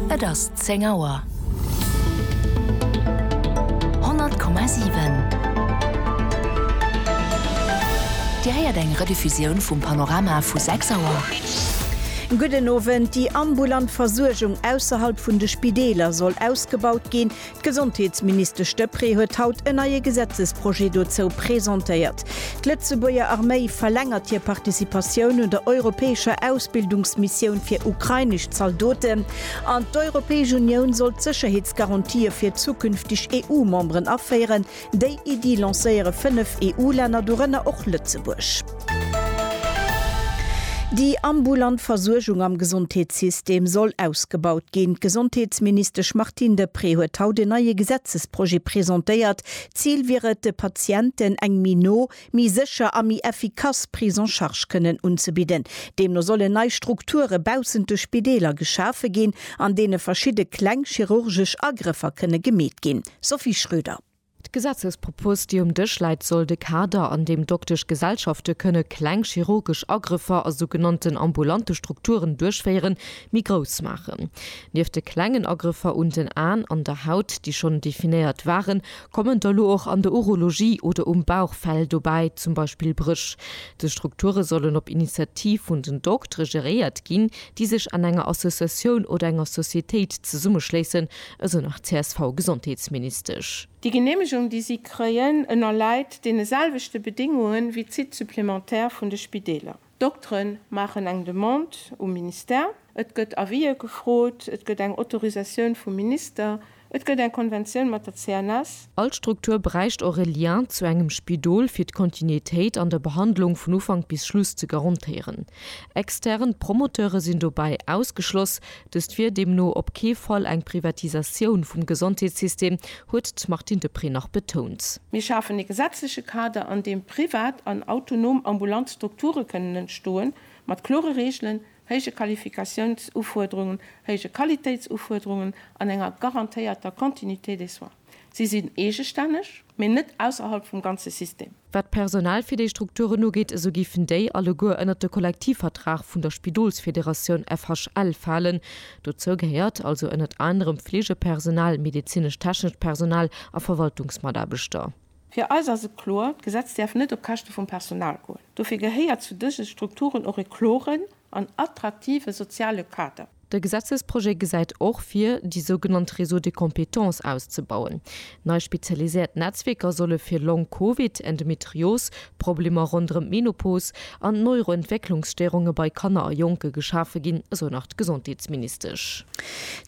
Et ass 10 Auer. 100,7 Dir héiert eng Rediffusioun vum Panorama vu 6 Auer. Gudden Owend. Déi ambulant Versuergung ausserhalb vun de Spideeler soll ausgebaut ginn. D'Gesondheetsministesch Deprez huet haut en neie Gesetzesprojet dozou presentéiert. D'Lëtzebuerger Arméi verlängert hir Participatioun un der europäescher Ausbildungsmissioun fir ukrainesch Zaldoten an d'Europäesch Unioun soll d'Sécherheetsgarantië fir zukünfteg EU-Memberen aféieren, Déi Iddi lancéiere fënnef EU-Länner, dorënner och Lëtzebuerg. Déi ambulant Versuergung am Gesondheetssystem soll ausgebaut ginn. D'Gesondheetsministesch Martine Deprez huet haut en neie Gesetzesprojet presentéiert. D'Zil wier et, de Patienten eng méi no, méi sécher a méi effikass Prise en charge kënnen unzebidden. Deemno sollen nei Strukture baussent de Spideeler geschafe ginn, an deene verschidde kleng chirurgesch Agrëffer kënne gemeet ginn. Sophie Schröder. D'Gesetzespropos, déi um Dësch läit, soll de Kader, an deem Doktesch Gesellschafte kënne kleng chirurgesch Agrëffer a sougenannten ambulante Strukturen duerchféieren, méi grouss maachen. Nieft de klengen Agrëffer un den Aen an der Haut, déi schonn definéiert waren, kommen der elo och an der Urologie oder um Bauch Fäll dobäi, zum Beispill Brëch. Dës Strukture sollen op Initiativ vun den Doktere geréiert ginn, déi sech an enger Associatioun oder enger Societéit zesummeschléissen, esou nach d'CSV-Gesondheetsministesch. Déi Geneemegung, déi si kréien, ënnerläit deene selwechte Bedéngunge wéi d'Sites supplémentaires vun de Spideeler. D'Doktere maachen eng Demande um Ministère, et gëtt Avisë gefrot, et gëtt eng Autorisatioun vum Minister, et gëtt eng Konventioun mat der CNS, All Struktur bräicht och e Lien zu engem Spidol fir d'Kontinuitéit an der Behandlung vun Ufank bis Schluss ze garantéieren. Extern Promoteure sinn dobäi ausgeschloss. Dëst wier deemno op kee Fall eng Privatisatioun vum Gesondheetssystem, huet d'Martine Deprez nach betount. Mir schafen e gesetzleche Kader, an deem privat an autonom ambulant Strukture kënnen entstoen, mat klore Reegelen, héije Qualifikatiounsufuerderungen, héije Qualitéitsufuerderungen an enger garantéierter Continuité des soins. Si sinn eegestänneg, mee net ausserhalb vum ganze System. Wat d'Personal fir déi Strukturen ugeet, esou géifen déi alleguer ënnert de Kollektivvertrag vun der Spidolsfederatioun FHL falen. Dozou gehéiert also ënnert anerem Fleegepersonal, medezinesch-technescht Personal a Verwaltungsmataarbechter. Fir eis ass et kloer, d'Gesetz däerf net op Käschte vum Personal goen. Dofir gehéiert zu dëse Strukturen och e kloren an attraktive soziale Kader. De Gesetzesprojet gesäit och vir, déi sougenannt Réseaux de compétences auszebauen. Nei spezialiséiert Netzwierker solle fir Long-Covid, Endometrios, Problemer ronderëm d'Menopos an d'Neuroentwécklungsstéirunge bei Kanner a Jonke geschafe ginn, esou nach d'Gesondheetsministesch.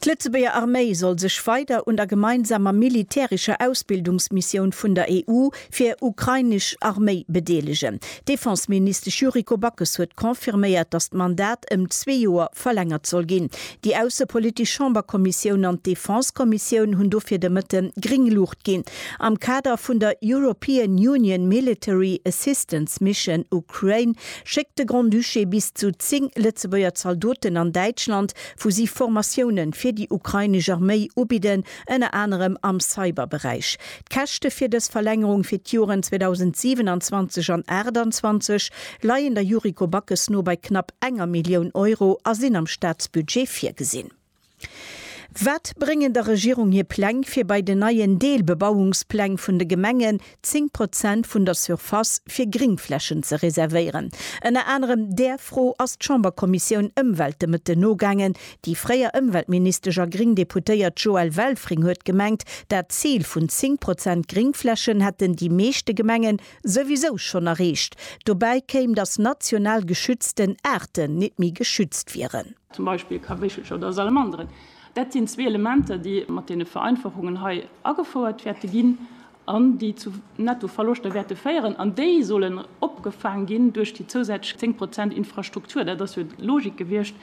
D'Lëtzebuerger Arméi soll sech weider un der gemeinsamer militärescher Ausbildungsmissioun vun der EU fir ukrainesch Arméi bedeelegen. D'Defenseministesch Yuriko Backes huet confirméiert, datt d'Mandat ëm zwee Joer verlängert soll ginn. Déi aussepolitesch Chamberkommissioun an d'Defensekommissioun hunn dofir de Mëtte gréng Luucht ginn. Am Kader vun der European Union Military Assistance Mission Ukraine schéckt de Grand-Duché bis zu 10 Lëtzebuerger Zaldoten an Däitschland, wou si Formatioune fir déi ukrainesch Arméi ubidden, ënner anerem am Cyberberäich. D'Käschte fir dës Verlängerung fir d'Joren 2027 an 28 leien der Yuriko Backes no bei knapp enger Millioun Euro a sinn am Staatsbudget virgesinn. Wat bréngen der Regierung hir Pläng, fir bei den neien Deelbebauungspläng vun de Gemengen 10 Prozent vun der Surface fir Gringflächen ze reservéieren? Ënner anerem där Fro ass d'Chamberkommissioun Ëmwelt de Mëtten nogaangen. Déi fréier Ëmweltministesch a gring Deputéiert Joëlle Welfring huet gemengt, dat Zil vun 10 Prozent Gringflächen hätten déi meeschte Gemengen souwisou schonn erreecht. Dobäi kéim, datt national geschützten Aarten net méi geschützt wieren. zum Beispill Kawéchelcher oder Salamanderen, dat sinn zwee Elementer, déi mat deene Vereinfachungen hei agefouert wäerte ginn an déi zu Nettoverloschter wäerte féieren. An déi sollen opgefaang ginn duerch déi zousätzlech zéng Prozent Infrastruktur. Dat ass jo d'Logik gewiescht,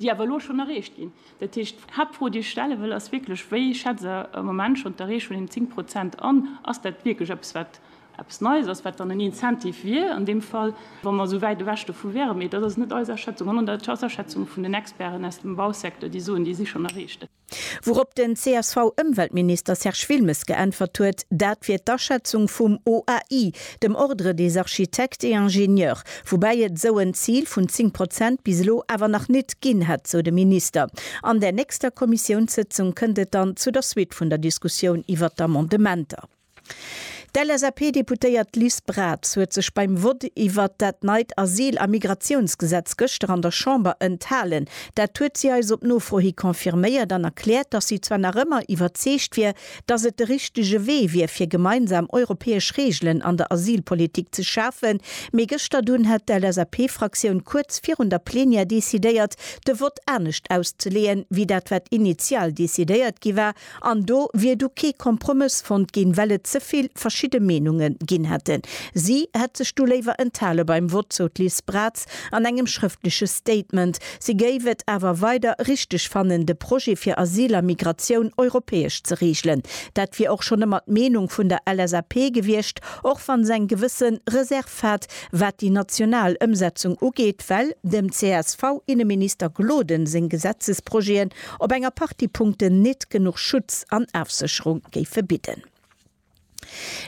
déi awer elo schonn erreecht ginn. Dat heescht, d'Haaptfro, déi ech stelle wëll, ass wierklech, Wéi schätzt Der am Moment schonn d'Erreechung vun deenen zéng Prozent an? Ass dat wierklech eppes, wat eppes Neies ass, wat dann en Incentive wier an deem Fall, wa mer esou wäit ewech dovu wäeren. Mee dat ass net eis Aschätzung, sondern dat ass d'Aschätzung vun den Experten aus dem Bausecteur, déi soen, déi si schonn erreecht. Wourop den CSV-Ëmweltminister Serge Wilmes geäntwert huet, dat wier d'Aschätzung vum OAI, dem Ordre des architectes et ingénieurs, woubäi et esou en Zil vun 10 Prozent bis elo awer nach nit ginn hätt, sou de Minister. An där nächster Kommissiounssëtzung kënnt et dann zu der Suite vun der Diskussioun iwwert d'Amendementer. D'LSAP-Deputéiert Liz Braz huet sech beim Vott iwwert dat neit Asyl a Migratiounsgesetz gëschter an der Chamber enthalen. Dat huet si eis op Nofro hi confirméiert an erkläert, datt si zwar nach ëmmer iwwerzeegt wier, datt et de richtege Wee wier fir gemeinsam europäesch Reegelen an der Asylpolitik ze schafen, mee gëschter dunn hätt d'LSAP-Fraktioun kuerz virun der Plenière decidéiert, de Vott anescht auszeleeën, wéi dat wat initial decidéiert gi war. An do wier du kee Kompromëss fonnt ginn, well et ze vill verschidde Meenunge ginn hätten. Si hätt sech du léiwer enthale beim Vott, sou d'Liz Braz an engem schrëftleche Statement. Si géif et awer weider richteg fannen, de Projet fir Asyl a Migratioun europäesch ze reegelen. Dat wier och schonn ëmmer d'Meenung vun der LSAP gewiescht, och wann se eng gewësse Reserv hat, wat déi national Ëmsetzung ugeet, well dem CSV-Inneminister Gloden seng Gesetzesprojeten Op enger Partie Punkten nit genuch Schutz an Afsecherung géife bidden.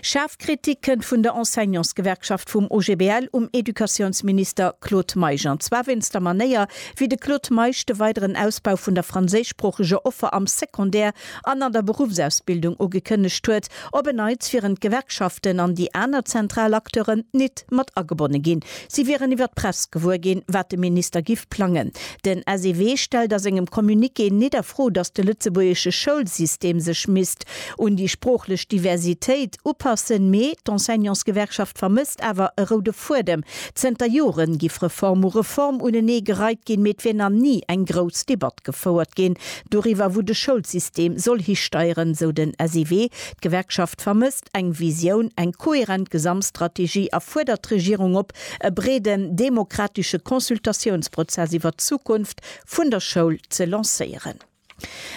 Schaarf Kritik kënnt vun der Enseignantsgewerkschaft vum OGBL um Educatiounsminister Claude Meisch an zwar wéinst der Manéier, wéi de Claude Meisch de weideren Ausbau vun der franséischsproocheger Offer am Secondaire an an der Beruffsausbildung ugekënnegt huet. Op en Neits wieren d'Gewerkschaften an déi aner zentral Acteuren nit mat agebonne ginn. Si wieren iwwer d'Press gewuer ginn, wat de Minister giff plangen. Den SEW stellt a sengem Communiqué nit a Fro, datt de lëtzebuergesche Schoulsystem sech misst un déi sproochlech Diversitéit upassen, mee d'Enseignantsgewerkschaft vermësst awer e roude Fuedem. Zënter Jore giff Reform u Reform unenee gereit ginn, mee et wier nach ni eng grouss Debatt gefouert ginn doriwwer, wou de Schoulsystem soll histeieren, sou den SEW. D'Gewerkschaft vermësst. braucht eng Visioun, eng kohärent Gesamtstrategie a fuerdert d'Regierung op, e breeden demokratesche Consultatiounsprozess iwwert d'Zukunft vun der Schoul ze lancéieren.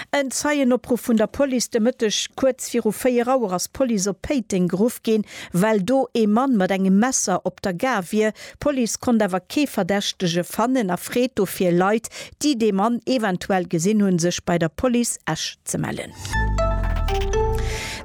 En Zeienopruff vun der Police de Mëtteg kuerz viru 4 Auer ass d'Police op Péiteng geruff ginn, well do ee Mann mat engem Messer op der Gare wier, D'Police konnt awer kee Verdächtege fannen a freet dofir Leit, déi dee Mann eventuell gesinn hunn, sech bei der Police Esch ze mellen.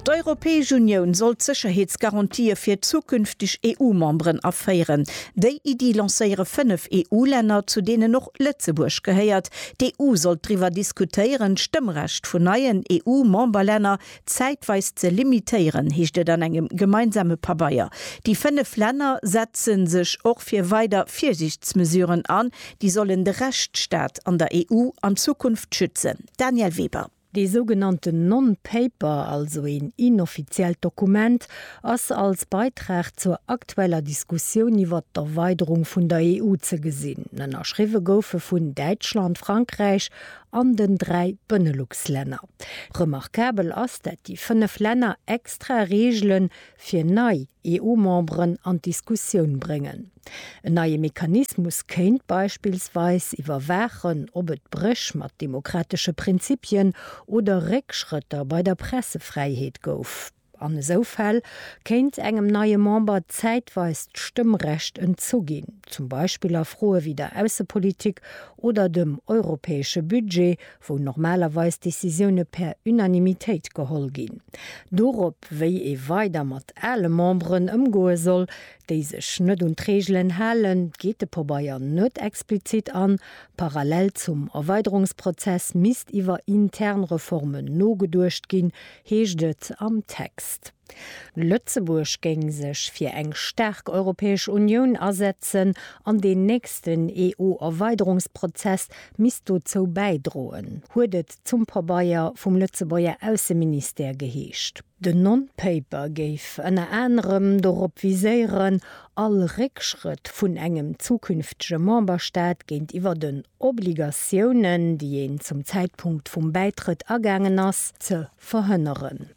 D'Europäesch Unioun soll d'Sécherheetsgarantië fir zukünfteg EU-Memberen aféieren. Déi Iddi lancéiere fënnef EU-Länner, zu deenen och Lëtzebuerg gehéiert. D'EU sollt driwwer diskutéieren, d'Stëmmrecht vun neien EU-Memberlänner Zäitweis ze limitéieren, heescht et an engem gemeinsame Pabeier. Déi fënnef Länner setze sech och fir weider Virsiichtsmesuren an, déi sollen de Rechtsstaat an der EU an Zukunft schützen. Danièle Weber. Dee sougenannten Non-Paper, also een inoffiziellt Dokument, ass als Beitrag zur aktueller Diskussioun iwwert d'Erweiderung vun der EU ze gesinn. Ënnerschriwwe gouf e vun Däitschland, Frankräich an den dräi Beneluxlänner. Remarkabel ass, dat déi fënnef Länner extra Reegele fir nei EU-Memberen an d'Diskussioun bréngen. En neie Mechanismus kéint beispillsweis iwwerwaachen, ob et Bréch mat demokratesche Prinzipien oder Réckschrëtter bei der Pressefräiheet gouf. An esou Fäll kéint engem neie Member zäitweis d'Stëmmrecht entzu ginn, zum Beispill a Froe wéi der Aussepolitik oder dem europäesche Budget, wou normalerweis Decisioune per Unanimitéit geholl ginn. Dorop, wéi ee weider mat ale Memberen ëmgoe soll, déi sech net un d'Reegelen halen, geet de Pobeier net explizit an. Parallel zum Erweiderungsprozess misst iwwer intern Reformen nogeduecht ginn, heescht et am Text. Lëtzebuerg géing sech fir eng staark Europäesch Unioun asetzen an deen nächsten EU-Erweiderungsprozess misst dozou bäidroen, huet et zum Pabeier vum Lëtzebuerger Ausseministère geheescht. Den Non-Paper géif ënner anerem dorop viséieren, all Réckschrëtt vun engem zukünftege Memberstaat géintiwwer den Obligatiounen, déi een zum Zäitpunkt vum Bäitrëtt agaangen ass, ze verhënneren.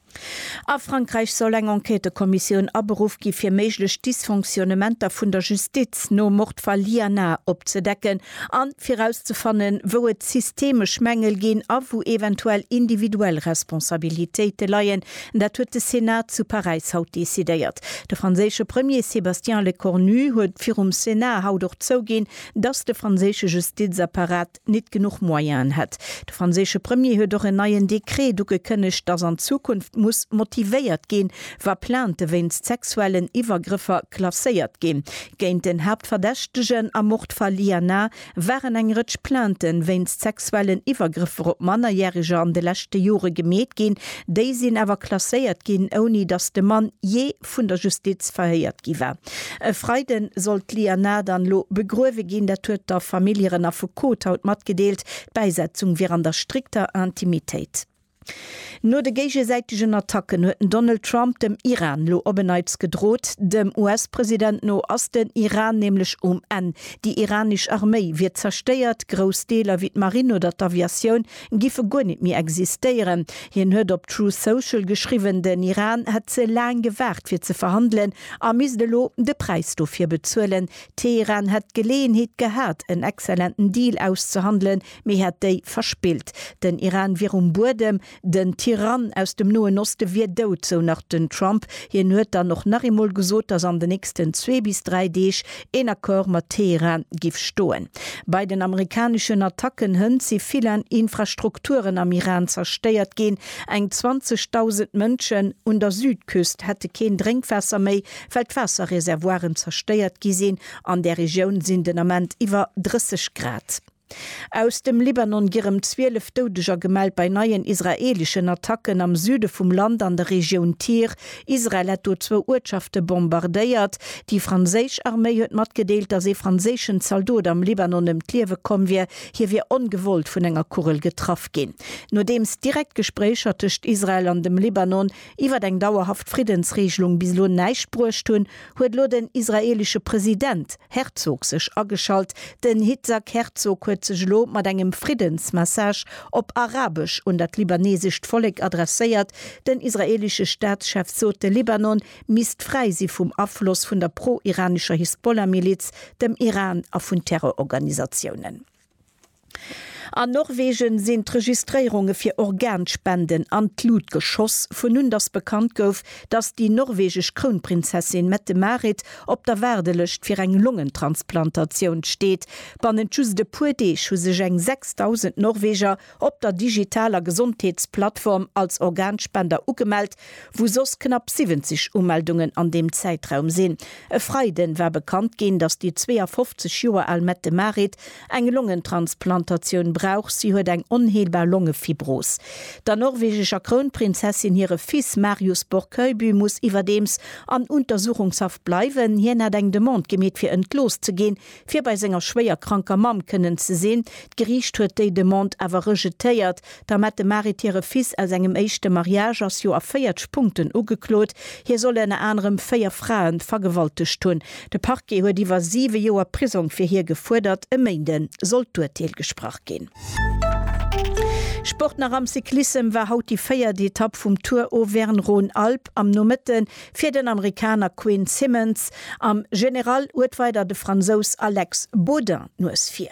A Frankräich soll eng Enquêtëkommissioun aberuff gi fir méiglech Dysfonctionnementer vun der Justiz nom Mordfall Liana opzedecken a fir rauszefannen, wou et systemesch Mängel ginn a wou eventuell individuell Responsabilitéite leien. Dat huet de Senat zu Paräis haut decidéiert. De franséische Premier Sébastien Lecornu huet virum Senat haut och zouginn, dass de franséische Justizapparat nit genuch Moyenen hätt. De franséische Premier huet och en neien Dekret ugekënnegt, dass an Zukunft muss motivéiert ginn, wa Plainte wéinst sexuellen Iwwergrëffer klasséiert ginn. Géint den Haaptverdächtegen am Mord Fall Liana waren eng Rëtsch Plainte wéinst sexuellen Iwwergrëffer op Mannerjäreger an de leschte Jore gemeet ginn. Déi sinn awer klasséiert ginn, ouni dass de Mann jee vun der Justiz verhéiert gi war. E Freiden soll d'Lia Na dann elo begruewe ginn. Dat huet der Famill hiren Affekot haut matgedeelt. D'Bäisetzung wier an der strikter Intimitéit. No de géigesäitegen Attacken huet den Donald Trump dem Iran elo op en Neits gedrot. Dem US-President no ass den Iran nämlech um Enn. Déi iranesch Arméi wier zerstéiert, grouss Deeler wéi d'Marine oder d'Aviatioun Giffe guer nit méi existéieren. Hien huet op Truth Social geschriwwen, den Iran hätt ze laang gewaart fir ze verhandelen a misst elo de Präis dofir bezuelen. Teheran hätt d'Geleeënheet gehat en exzellenten Deal auszehandelen, mee hätt déi verspillt. Den Iran wier um Buedem, den Tyrann aus dem Noen Oste wier dout, sou nach den Trump. Hien huet dann och nach eemol gesot, datt an den nächsten zwee bis dräi Deeg Een Accord mat Teheran giff stoen. Bei den amerikaneschen Attacken hënt si villan Infrastrukturen am Iran zerstéiert ginn. Eng 20.000 Mënschen un der Südküst hätte keen Drénkwaasser méi, well d'Waasserreservoiren zerstéiert gi sinn. An där Regioun sinn den Ament iwwer 30 Grad. Aus dem Libanon gi rem 12 Doudeger gemellt bei neien israeeleschen Attacken am Süde vum Land an der Regioun Tyr. Israel hätt do zwou Uertschafte bombardéiert. Déi franséisch Arméi huet matgedeelt, datt ee franséischen Zaldot am Libanon ëm d'Liewe komm wier. Hie wier ongewollt vun enger Kugel getraff ginn. Nodeems direkt Gespréicher tëscht Israel an dem Libanon iwwert eng dauerhaft Friddensregelung bis elo näischt bruecht hunn, huet elo den israeelesche President Herzog sech ageschalt. Den Hitzhak Herzog huet sech elo mat engem Friddensmessage op Arabesch un dat libanesescht Vollek adresséiert. Den israeelesche Staatschef sot, de Libanon misst fräi si vum Afloss vun der pro-iranescher Hisbollah-Miliz, dem Iran a vun Terrororganisatiounen. An Norwegen sinn d'Registréierunge fir Organspenden an d'Lut geschoss, vun un dass bekannt gouf, dass déi norwegesch Krounprinzessin Mette-Marit op der Waardelëscht fir eng Longentransplantatioun steet. Bannent just e puer Deeg hu sech eng 6.000 Norweger op der digitaler Gesondheetsplattform als Organspender ugemellt, wou soss knapp 70 Umeldungen an deem Zäitraum sinn. E Freiden war bekannt ginn, dass déi 52 Joer al Mette-Marit Eng Longentransplantatioun brauch si, huet eng onheelbar Longefibros. Der norwegescher Krounprinzessin hire Fils Marius Borchøyby muss iwwerdeems an Untersuchungshaft bleiwen. Hien hat eng Demande gemeet fir entlooss ze ginn, fir bei senger schwéier kranker Mamm kënnen ze sinn. D'Geriicht huet déi Demande awer rejetéiert, D'Amette Marit hire Fils aus engem éischte Mariage ass jo a 40 Punkten ugeklot. Hie soll ënner anerem véier Frae vergewaltegt hunn. De Parquet huet iwwer siwe Joer Prisong fir hie gefuerdert. E Méinde soll d'Urteel gesprach ginn. Sport nach am Cyclissem war haut déi véiert Etapp vum Tour Auvergne-Rhône-Alpes am Nomëtte fir den Amerikaner Quinn Simmons. Am General huet weider de Fransous Alex Baudin d'Nues vir.